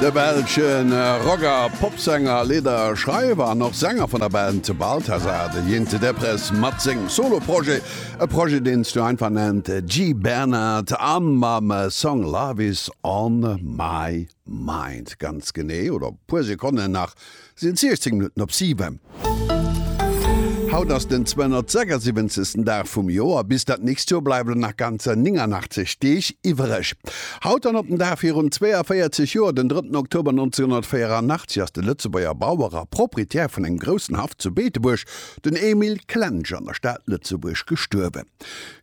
De belsche Rock a Popsänger, Leeder, Schreiwer an och Sänger vun der Band Balthazar, de Jeanty Deprez mat sengem Solo-Projet. E Projet deen s du einfach nennt G. Bernard a mam Song Love is on my mind ganz genee oder e puer Sekonnen nach Si hunn 16 Minutten op 7. Haut ass den 276. Dag vum Joer. Bis dat nächst Joer bleiwen der nach ganzer 89 Deeg iwwereg. Haut an op den Dag virun 42 Joer, den 3. Oktober 1984, ass de Lëtzebuerger Bauer a Proprietär vun engem groussen Haff zu Beetebuerg, den Emile Klensch, an der Stad Lëtzebuerg gestuerwen.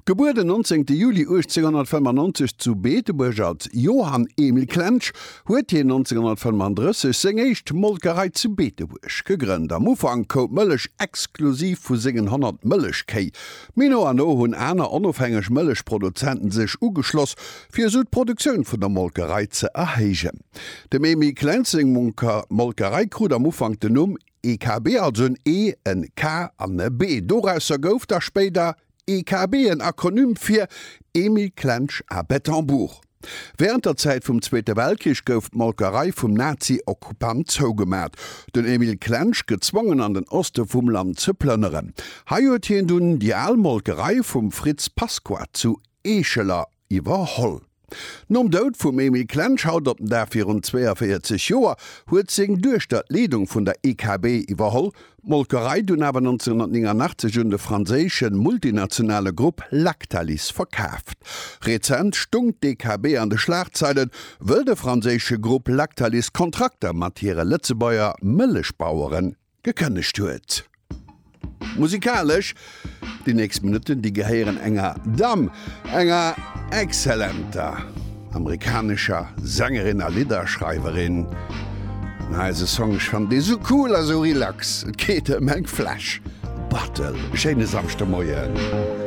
Gebuer den 19 Juli 1895 zu Beetebuerg als Johann Emil Klensch, huet hien 1935 seng éischt Molkerei zu Beetebuerg gegrënnt. Am Ufank koup d'Mëllech exklusiv vu sengen 100 Mëllechkéi, mee no an no hunn aner onofhängeg Mëllechproduzenten sech ugeschloss, fir esou d'Produktioun vun der Molkerei ze erhéijen. Dem Emil Klensch seng Molkerei krut am Ufank den Numm EKB, also en E, en K an e B. Dorausser gouf da spéider. EKB, en Akronym fir Emil Klensch à Bettembourg. Wärend der Zäit vum Zweete Weltkrich gouf d'Molkerei vum Nazi-Okkupant zougemat, den Emil Klensch gezwongen an den Oste vum Land ze plënneren. Hei huet hien dunn déi al Molkerei vum Fritz Pasqua zu Eescheler iwwerholl. Nom Doud vum Emile Klensch haut op den Dag virun 42 Joer huet seng Duechter d'Leedung vun der IKB iwwerholl, d'Molkerei dunn awer 1989 un de franséische multinationale Grupp Lactalis verkaaft. Rezent stung d'IKB an de Schlagzeilen, wëll de franséische Grupp Lactalis Kontrakter mat hire Lëtzebuerger Mëllechbaueren Gekënnegt huet. Musikalesch déi nächst Minutten, déi gehéieren enger Damm, enger exzellenter amerikanescher Sängerin a Lidderschreiwerin. An eise Song, ech fannen dee sou cool a sou relax, et geet ëm eng Fläsch Buttle e schéine Samschdemoien.